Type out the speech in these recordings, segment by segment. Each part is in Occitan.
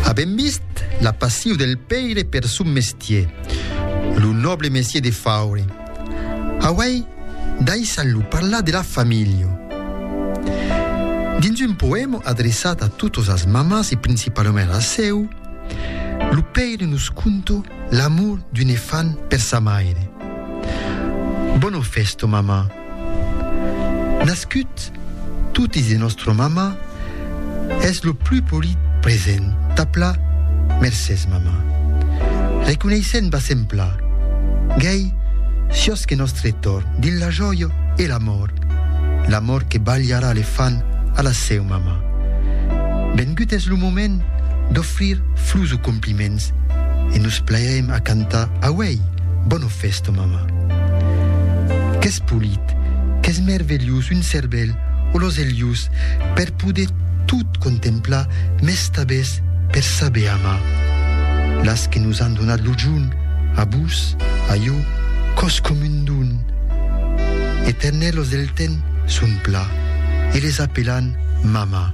Avèm vist la passiu del pèire per son mestier, lo nòble mestier de faure. Auai daissat-lo parlar de la familha. Dins un poèma adreçat a totas las mamans e principalament a la seu, lo pèire nos conta l'amor d'un efant per sa maire. Bona fèsta, mamà! Nascut totis de nostra mama es lo plus polit present tapla mercés mama reconeissent basempla gei siós que nostre torn dins la jòia e l'amor l'amor que balharà le fan a la seu mama vengut es lo moment d'ofrir flus o compliments e nos plairem a cantar auèi bona festa mama. Qu'es polit, qu'es mervelhós un cervèl o los elhos per poder tot contemplar mes tabès per saber amar. Las que nos an donat lo junt, a vos, a jo, còs com un don. Eternèl los del ten son pla e les apelan mama.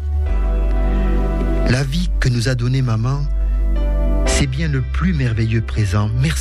La vie que nos a donné maman, c'est bien le plus merveilleux présent. Merci.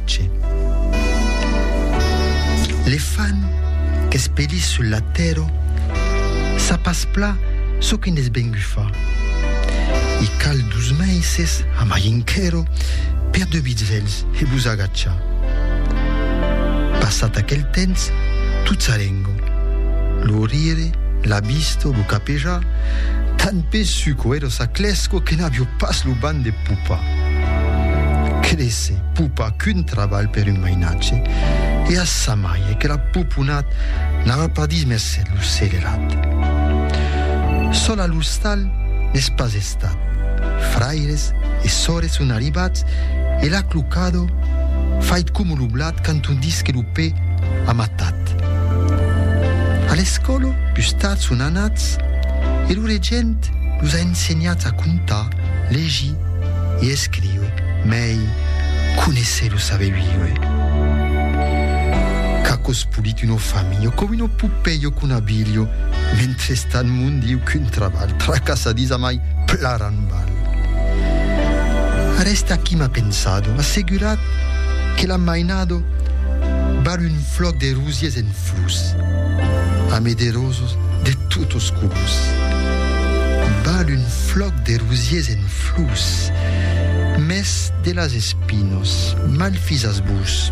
Che le fan qu'es pedís sul latero sa pas pla çò que n'es vengut fa. I cal dus meises a mai enquero per de bitzèls e vos agachar. Passat aquel temps, tot s'alengo, lo rire, la visto, lo capejar, tan pesuc o ero sa clèsco que n'avio pas lo ban de popa. se pupa qu'un trabalh per un mainatge, e a sa maie que la puponat n'ava pas dit merced lo selerat. Sol a l'ostal n'es pas estat. Fraires e sores son arribats e l'ha clocado fait coma lo blat quand on dis que lo pè a matat. A l'escòla, pus tard son anats e lo regent los a ensenhats a contar, legir, I escriu, mei conéisser lo saber viure. Qu'a cospolit uno familho, com uno pupelho qu'un abilho, mentrestant mon Diu qu'un trabalh, tra casa dins a mai plaran balh. Ara est aquí m'a pensado, assegurat que l'an mainado balh un flòc de rosiers en flus, ame de rosos de totos colors, balh un flòc de rosiers en flors, mès de las espinos, malfisas vos!